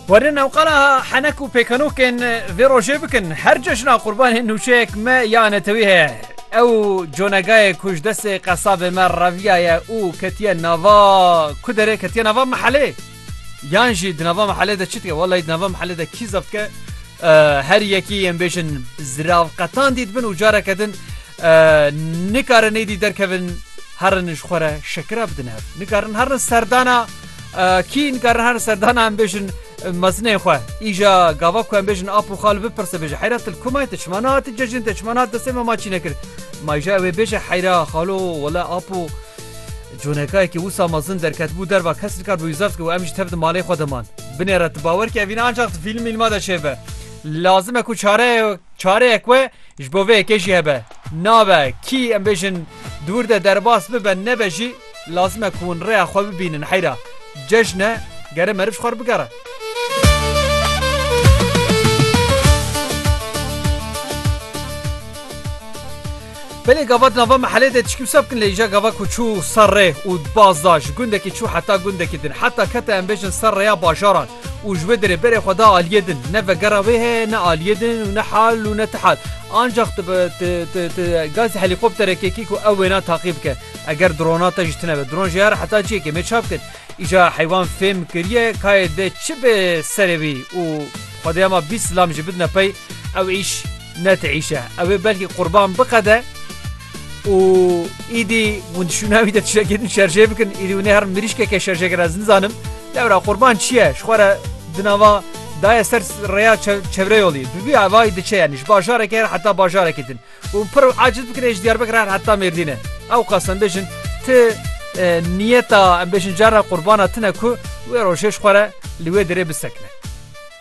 Werin ew qala henek û pêkenokên vê rojê bikin her cejna qurbanên nûçeyek me ya netewî heye. Ew conegayê ku ji destê qesabê me reviyaye û ketiye nava ku derê ketiye nava mehelê. Yan jî di nava mehelê de çi dike welay di nava mehelê de kî zaf dike her yekî yên bêjin ziravqetan dît bin û careke din Nikarin êdî derkevin herin ji xwe re şekira bidin hev. Nikarin herin serdana kî nikarin herin serdana em bêjin mezinên xwe. Îja gava ku em bêjin ap û xal bipirse bêje heyra til komayê te çima nehati cejin te çima nehat destê me ma çî nekir. Mayja wê bêje heyra xalo wele ap û conekayekî wisa mezin derketbû derva kes nikar bû zeft ku em ji tev di malê xwe deman. Binê re tu bawer ke evîna ancak di fîlm mîlma de çêbe. Lazim e ku çare çareyek we Ji bo vê yekê jî hebe, nabe, kî em bêjin di wir de derbas bibe nebe jî lazim e ku hûn rêya xwe bibînin heyra cejn e gere meriv ji xwe re bigere. Belê gava di nava mehelê de tişkî wisa bikin lê îja gava ku çû ser rê û baz da ji gundekî çû heta gundekî din heta kete em bêjin ser rêya bajaran Û ji wê derê berê xwe da aliyê din. Ne vegera wê heye ne aliyê din û ne hal û ne ti hal. Ancax tu bi ti ti ti gazî helîkopterekê kî ku ew wêna taqî bike. Eger drona te jî tune be. Dron jî her heta ciyekê mê çap kir. Îja heywan fêm kiriye kayê dê çi bê serê wî û xwedêya ma bîst silam jî bidine pey ew îş Netîîşe ew ê belkî qurban biqede û îdî hûn dişûna wî de tiştekê din şerjê bikin îdî hûn ê herin mirîşkeke şerjêger ez nizanim lewra qurban çi ye ji xwe re di nava daye ser rêya çevreyolî bibî evayî diçe yanî ji bajarekê her heta bajarekî din û pir aciz bikirê ji Diyarbekir her heta Mêrdînê ewqas em bêjin ti niyeta em bêjin cara qurbana tune ku wê rojê ji xwe re li wê derê bisekine.